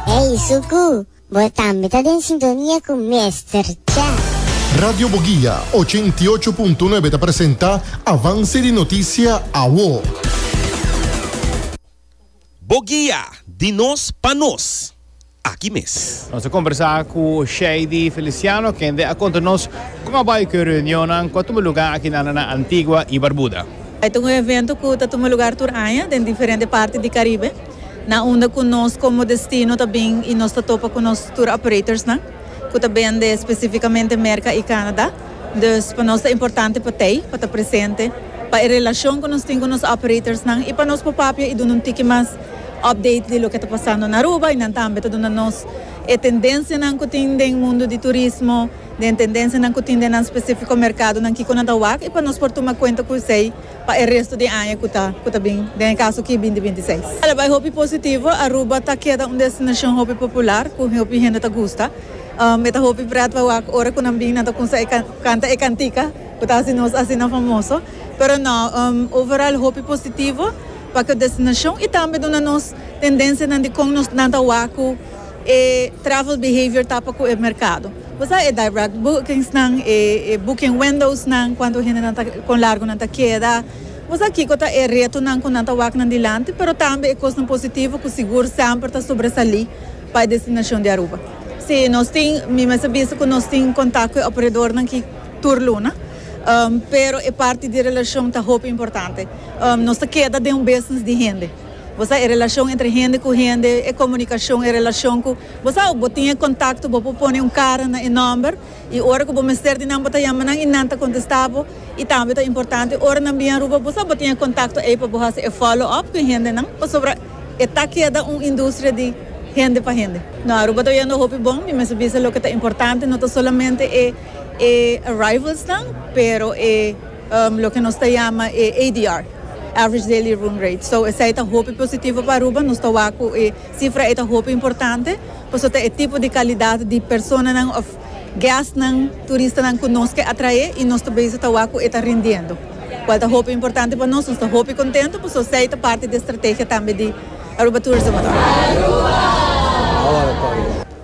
Ey Suku, bo tambe ta den sintonia cu Mester Chef. Radio Boguia ochenta i ocho punto nuebe ta presenta Avance di Noticia Awo. Boguia, di nos pa nos, aki mes. Nos a combersa cu Shady Feliciano, kende a conta nos con a bay cu e reunionnan cu a tuma lugar akinanda na Antigua y Barbuda. Ey ta un evento cu ta tuma lugar tur aña den diferente parti di Caribe. na unda cu nos como destino ta bin y nos ta topa cu nos tour operatorsnan cu ta bende specificamente Merca y Canada. Dus pa nos ta importante pa tey pa ta presente pa e relacion cu nos tin cu nos operatorsnan y pa nos por papia y duna un tiki mas update di loke ta pasando na Aruba y nan tambe ta duna nos e tendencianan cu tin den mundo di turismo, den tendencianan cu tin den nan specifico mercadonan kico nan ta wak y pa nos por tuma cuenta cu esey. pa e resto di e aña cu ta cu ta bin, den e caso aki binti binti seis. Ala bay hopi positivo, Aruba ta keda un destinacion hopi popular cu hopi hende ta gusta. Um e ta hopi pret pa wak ora cu nan bin nan ta cunsha e can canta e cantica cu ta haci nos asina famoso. Pero no, um overall hopi positivo pa cu destinacion y tambe duna nos tendencianan di con nos nan ta wak cu. E travel behavior tapa cu e mercado. Bo sa e direct bookings nan, e e booking windows nan, cuanto hende nan ta, con largo nan ta keda. Bo sa kico ta e retonan cu nan ta wak nan dilanti, pero tambe e cosnan positivo cu sigur semper ta sobresali pa e destinacion di Aruba. Si, nos tin, mi mester bisa cu nos tin contact cu e operadornan ki tur luna, pero e parti di relacion ta hopi importante. Nos ta keda den un business di hende. Bo sa e relashon entre hende ku hende, e komunikashon, e relashon ku bo sa, bo tin e kontakto, bo por pone un kara na e nòmber i ora ku bo mester di nan bo ta yama nan i nan ta kontestá bo. I tambe ta importante ora nan bia Aruba bo sa bo tin e kontakto ei pa bo hasi e follow up ku e hendenan pasobra e ta keda un industria di hende pa hende. No, Aruba ta oyendo hopi bon. Mi mester bisa loke ta importante no ta solamente e arrivals nan pero e. Loke nos ta yama e ADR, Average Daily Room Rate. So esei ta hopi positivo pa Aruba. Nos ta wak cu e cifra ei ta hopi importante paso ta e tipo di calidad di personanan of guestnan, turistanan cu nos ke atrae y nos ta bezig ta wak cu e ta rindiendo, cual ta hopi importante pa nos. Nos ta hopi contento paso esei ta parti di e strategia tambe di Aruba Tourism Authority.